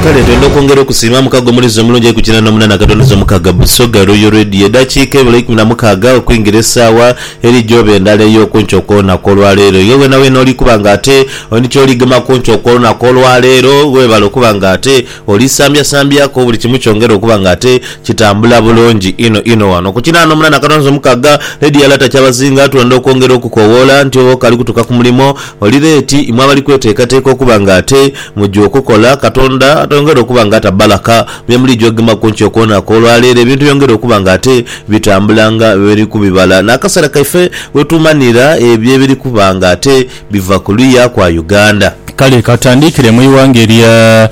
Kale twenda okwongera okusiima mukago omulizi omulungi eku kina nomunana katoneza omukaga Busoga Royal Radio edakiika ebula eikumi na mukaaga okwingira esaawa eri gyoba endala eyokunkya okwolunaku olwaleero iwe wena wena oli kuba nga ate oli kyoli gema kunkya okwolunaku olwaleero webale okuba nga ate oli sambya sambyaku buli kimu kyongere okuba nga ate kitambula bulungi inho inho wano ku kina nomunana katoneza omukaga Radio Lata Kyabazinga twenda okwongera okukowoola nti oba okali kutuka kumulimo Oli leeti, imwe abali kweteekateeka okuba nga ate muja okukola. Katonda atayongere okuba nga ata bbalaka bye muliija okugema ku nkyo kwonaku. Olwa leero ebintu byongere okuba nga ate bitambula nga bwe biri kubibala n'akaseera kaife we tumanhira ebyo ebiri kuba nga ate biva ku luya kwa Uganda. Kale ka tandhikire mu ighanga erya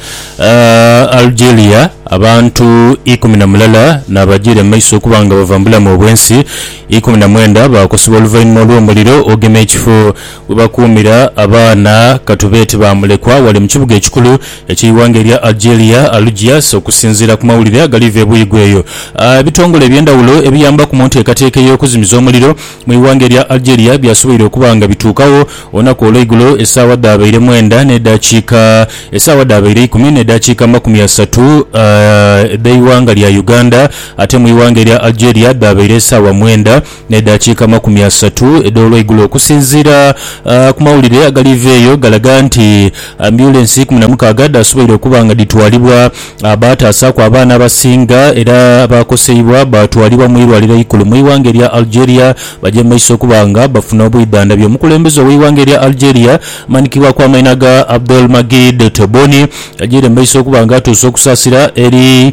Algeria. Abantu ikumi na mulala n'abajiire mu maiso okuba nga bava mu bulamu obw'ensi, ikumi na mwenda baakosebwa oluvainhuma olw'omuliro ogema ekifo We bakuumira abaana ka tube ti ba mulekwa ghale mu kibuga ekikulu eky'eighanga erya Algeria, Algiers. Okusinziira ku mawulire agaliva ebuuyi gh'eyo, ebitongole eby'endhawulo ebiyambaku mu nteekateeka ey'okuzimiza omuliro mu ighanga erya Algeria byasoboire okuba nga bituukagho olunaku olweigulo esaawa dhaabaire mwenda n'edhakiika esaawa dhaabaire ikumi n'edhakiika amakumi asatu edh'eighanga lya Uganda ate mu ighanga erya Algeria dhaabaire esaawa mwenda n'edaakiika amakumi asatu edh'olweigulo okusinziira ku mawulire agaliiva eyo galaga nti ambyulensi ikumi na mukaaga dhaasoboire okuba nga dhitwalibwa. Baataasaaku abaana abasinga era abaakoseibwa baatwalibwa mu irwaliro eikulu mu ighanga erya Algeria baje mu maiso okuba nga bafuna obwidhandhabi. Omukulembeze ow'eighanga erya Algeria amanhikibwaku amaina ga Abdelmagid Tebboune agiire mu maiso okuba nga atuusa okusaasira eri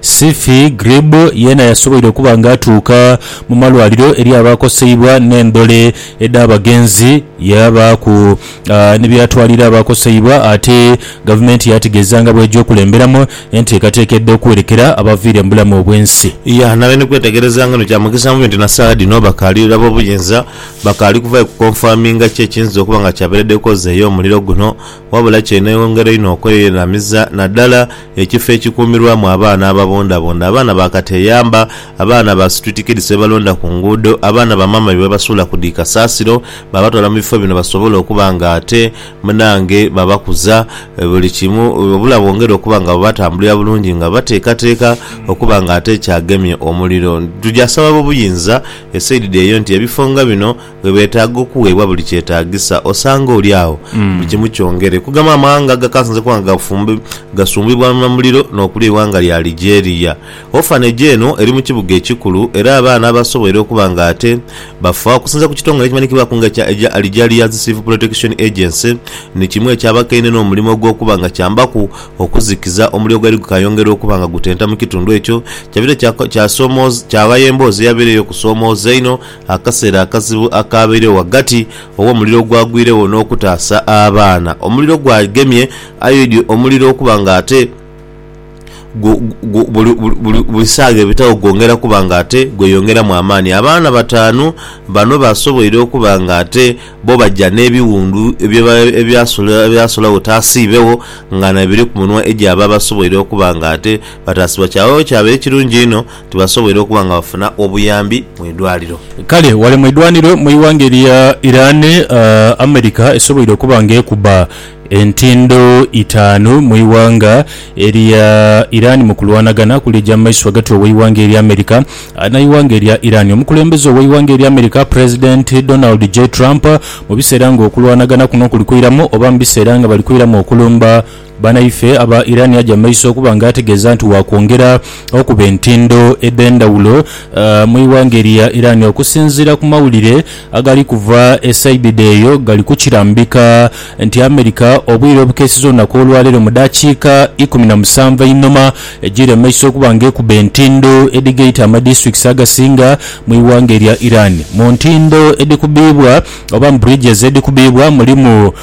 Sifi Grib yeena yasoboire okuba nga atuuka mu malwaliro eri abaakoseibwa n'endhole edh'abagenzi yaabaaku ni by'atwalira abaakoseibwa ate Gavumenti yaategeeza nga bw'eja okulemberamu enteekateeka edha okuwerekera abaviire mu bulamu obw'ensi. Yaanhabya ni kwetegereza nga bino kya mugisa mubi nti na saagha dhino bakaali ab'obuyinza bakaali kuvaayo kukonfaminga ki ekiyinza okuba nga kyabeeredde kozi ey'omuliro guno. wabula ky'eneeyongera inho okweyereramiza naddala ekifo ekikuumirwamu abaana ababundabunda, abaana ba kateeyamba, abaana ba street kids be balonda ku nguudo, abaana ba maama be basuula ku dhi kasaasiro baabatwala mu bifo bino basobole okuba nga ate munange babakuza buli kimu wabula bongere okuba nga babatambulira bulungi nga bateekateeka okuba nga ate kyagemye omuliro. Tugya saba ab'obuyinza e saidi eyo nti ebifo nga bino Bwebetaaga okuweebwa buli kyetaagisa, osanga oli agho buli kimu kyongere. Kugamba amawanga agakasinze kuba nga gafumbi, gasumbibwa na muliro n'okulya eighanga lya Algeria. Orphanage eno eri mu kibuga ekikulu era abaana abasoboire okuba nga ate bafa, okusinzira ku kitongole ekimanyikibwaku nga ekya Algeria's Civil Protection Agency, ni kimu ekyabakaine n'omulimo ogw'okuba nga kyambaku okuzikiza omuliro ogwali gukayongera okuba nga gutenta mu kitundu ekyo. Kyabire kyasomooza, kyaghaya emboozi eyabeire ey'okusoomooza einho. Akaseera akazibu akaabairegho ghagati gh'omuliro ogwagwiregho n'okutaasa abaana. Omuliro gwagemye Aidhi omuliro okuba nga ate gu, gu, buli, buli, buli saagha ebitagho gwongera kuba nga ate gweyongeramu amaani. Abaana bataanu bano baasoboire okuba nga ate bo baja n'ebiwundu ebyasula, ebyasulagho taasiibegho nga nayo biri ku munwa egy'abo abasoboire okuba nga ate bataasibwa. Kyabaire kyabaire kirungi inho. tibasobweire okuba nga bafuna obuyambi mu idwaliro. Kale ghale mu idwaniro mu ighanga erya Iran, America esobweire okuba nga ekuba entindo itaanu mu ighanga erya Iran mu kulwanagana okuli egy'amaiso ghagati ow'eighanga erya America n'eighanga erya Iran. Omukulembeze ow'eighanga erya America President Donald J. Trump mu biseera nga okulwanagana kuno kuli kwiramu oba mu biseera nga bali kwiramu okulumba, Banaife aba Iran aja mumaiso okuba nga ategeeza nti wakwongera okuba entindo edhendhawulo mu ighanga erya Iran okusinziira ku mawulire agali kuva e saidi dheeyo gali kukirambika nti America obwire obukeesiza olunaku olwaleero mu dakiika ikumi na musanvu einhoma ejiire mumaiso okuba nga ekuba entindo edhigaita amadistricts agasinga mu ighanga erya Iran. Mu ntindo edhikubiibwa oba mu bridges edhikubiibwa mulimu.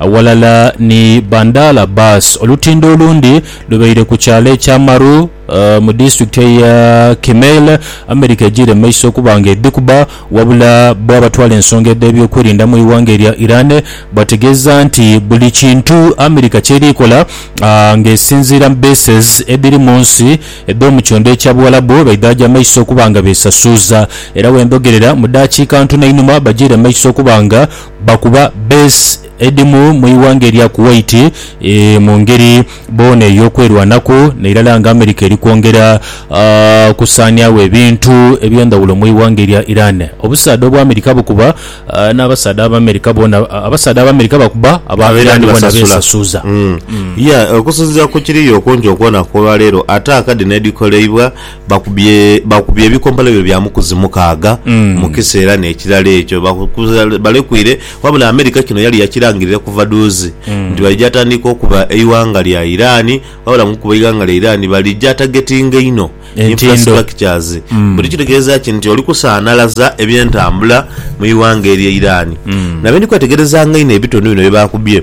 Aghalala ni Bandal Abbas, olutindo olundi lubaire ku kyalo ekya Maru mu disitulikiti eya Kimail, Amerika ejiire mu maiso okuba nga edhikuba, wabula bo abatwala ensonga edh'ebyokwerinda mu ighanga erya Iran bategeeza nti buli kintu Amerika kyeri kola nga esinziira mu bases edhiri mu nsi edh'omu kyondo ekya Buwalabu baidhaja maiso okuba nga besasuuza era wendhogerera mu daakiika ntono einhuma bajiire maiso okuba nga Bakuba Besi Edimu mu ighanga erya Kuwait mu ngeri boona ey'okwerwanaku, n'irala nga America eri kwongera kusaaniagho ebintu eby'endhaghulo mu ighanga erya Iran. Obusaadha obwa America bukuba n'abasaadha Abaamerika boona, abasaadha Abaamerika bakuba aba Iran boona beesasuza. Okusinziira ku kiri yo okumpi okwonaku olwaleero, ataaka dhino edhikoleibwa bakubye bakubye ebikombolo byo bya mukuzi mukaaga mu kiseera n'ekirala ekyo bakukuza- balekwire wabula Amerika kino yali yakirangirire kuva duuzi nti balija tandika okuba eighanga lya Iran wabula mu kuba eighanga lya Iran balija targetinga inho Entindo. infrastructures buli kitegeeza ki nti oli kusaanalaza eby'entambula mu ighanga erye Iran nabyo ndi kwetegerezanga inho ebitone bino bye bakubye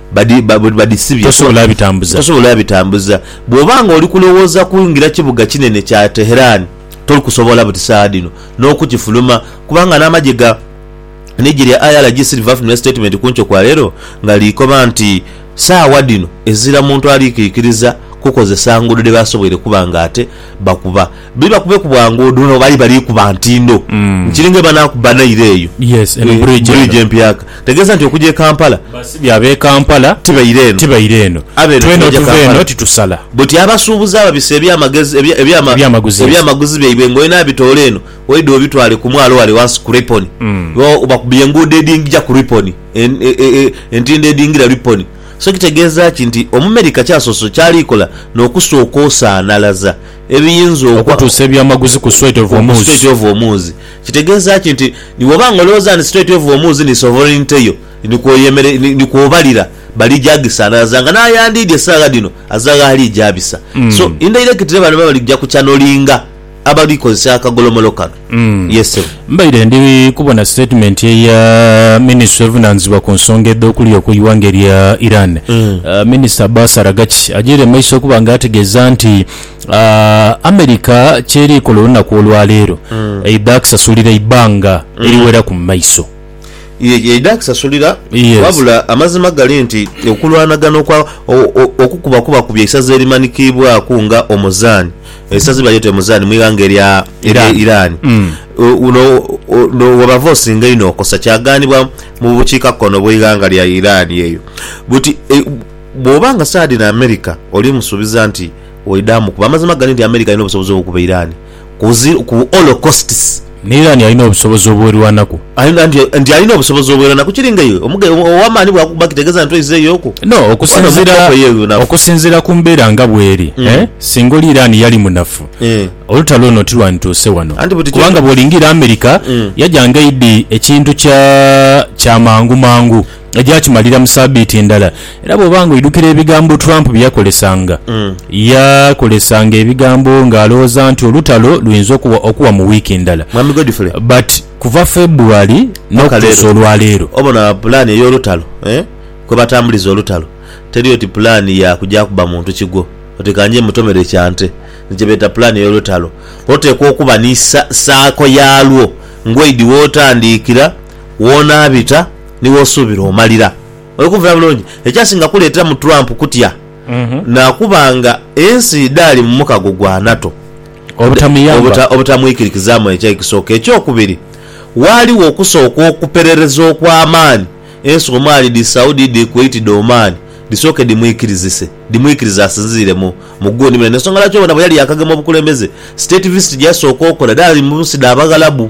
badisibye kuba tosobola bitambuza. Bwoba nga oli kulowooza kuingira kibuga kinene kya Tehran, toli kusobola buti saagha dhino n'okukifuluma kubanga n'amagye ga ligi lya IRGC livafunira sitatimenti ku nkyo kwa leero nga likoba nti saagha dhino ezira muntu ali kwikiriza kukozesa nguudo dhe basoboire kuba nga ate bakuba. Bibakube ku bwangu odho no bali bali kuba ntindo nkiri nga banakuba naire eyo Yes, eno bridge eno. bridge empyaka tegeza nti okuja e Kampala Basibye abe Kampala tibaire eno tibaire eno. Abe eno Twena tibaja otuva Kampala. eno titusala. Buti abasuubuzi ababisa ebyamagezi ebya- ebyama- Ebyamaguzi. ebyamaguzi byaibwe nga olina abitoola eno oidha obitwale ku mwalo wale wansi ku Ripon Bo bakubye enguudo edhingija ku Ripon en- e- e- e- entindo edhingira Ripon so kitegeeza ki nti Omumerika kyasoose kyali kola n'okusooka osaanalaza ebiyinza okutuusa ebyamaguzi ku Strait of Hormuz. Kitegeeza ki nti ni bw'oba nga olowooza nti Strait of Hormuz ni sovereignty yo, ni kw'oyemerera, ni kw'obalira, balija gisanaaza nga n'ayandiidye esaagha dhino aza gh'ali eja bisa. So indirectly bano baba bali kuja kuchanolinga abali kozesa akagolomolo kano. Yes sebo. Mbaire ndi kubona sitatimenti eya minisitule evunaanyizibwa ku nsonga edh'okulya ku ighanga erya Iran, ah, minisita Abbas Araghchi agyeire mu maiso okuba nga ategeeza nti ah, America ky'eri kola olunaku olwaleero eidha kusasulira eibanga eriweraku mu maiso. Ye yaidha akisasulira. Yes. Wabula amazima gali nti okulwanagana okwa o- o- okukuba kuba kubya isaza erimanikiibwaku nga Omuzaani, eisaza bwe balyeta Omuzaani mu ighanga erya erya Iran. Iran. Mm. O- Uno o- no- webava osinga inho okosa kyagaanibwa mu bukiika kkono bw'eighanga lya Iran eyo. Buti e, bw'oba nga saadi na America oli musuubiza nti oidha mukuba. Amazima gali nti America alina obusobozi obw'okukuba Iran. ku holocausts. N'era nti alina obusobozi obwerwanaku. Nti alina obusobozi obwerwanaku. Kiri nga iwe ow'amaani bw'akukuba kitegeeza nti oizeeyooku? No. Okusinziira ku mbeera nga bw'eri, singa oli Iran yali munafu, olutalo luno tilwandituuse wano. Kubanga bw'olingiira America, yaja nga eidhi ekintu kya mangu mangu. egya kimalira mu saabiiti endala. Era bw'oba ng'oidhukira ebigambo Trump bye yakolesanga, yakolesanga ebigambo ng'alowooza nti olutalo luyinza okuwa okuwa mu wiiki ndala. Mwami Godfrey. But kuva February Paka n'okutuusa leero. olwaleero. Obona pulaani ey'olutalo, eeh, kwe batambuliza olutalo, teri oti pulaani ya kugya kuba muntu kigwo oti ka nje mmutomere kya nte. Ni kye beeta pulaani ey'olutalo. Oteekwa okuba ni sa, saako yaalwo, ngw'oidhi w'otandiikira, w'onaabita, ni w'osuubira omalira. Oli kunvira bulungi? Ekyasinga kuleeteramu Trump kutya naakuba nga ensi dhaali mu mukago gwa NATO obutamwikirikizaamu eky'ekisooka. Ekyokubiri, waaliwo okusooka okuperereza okw'amaani ensi omwali dhi Saudi, dhi Kuwait, dhi Oman dhisooke dhimwikirizise dhimwikirize asinziire mu mu gundi mune. N'ensonga lwaki obona bwe yali yaakagema obukulembeze, state visit gye yasooka okola dhaali mu nsi dha Baghalabu.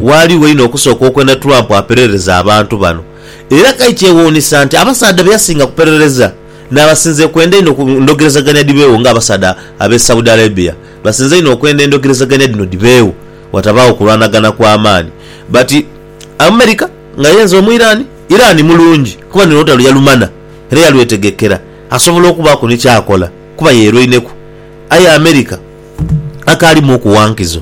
Ghaligho inho okusooka okwenda Trump aperereze abantu bano. Era kai kyewuunisa nti abasaadha be yasinga kuperereza n'abasinze kwenda inho ku ndhogerezaganya dhibeegho nga abasaadha ab'e Saudi Arabia basinze inho okwenda endhogerezaganya dhino dhibeegho watabaagho kulwanagana kwa maani. But America nga yenze omu Iran, Iran mulungi kuba ni lutalo yalumana era yalwetegekera asobola okubaaku ni ky'akola kuba yeerweineku. Aye America akaalimu okuwa nkizo.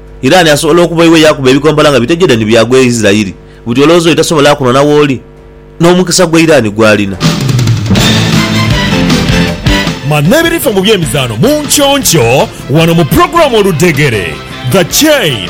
Irani asobola okuba iwe yaakuba ebikompola nga bitegedha ni byagwa e Isirairi? Buti olowooza oyo tasobola kunona wooli? N'omukisa gwa Irani gw'alina. Manha ebirifa mu by'emizaano mu nky'onkyo wano mu pulogulaamu Oludhegere, The Chain.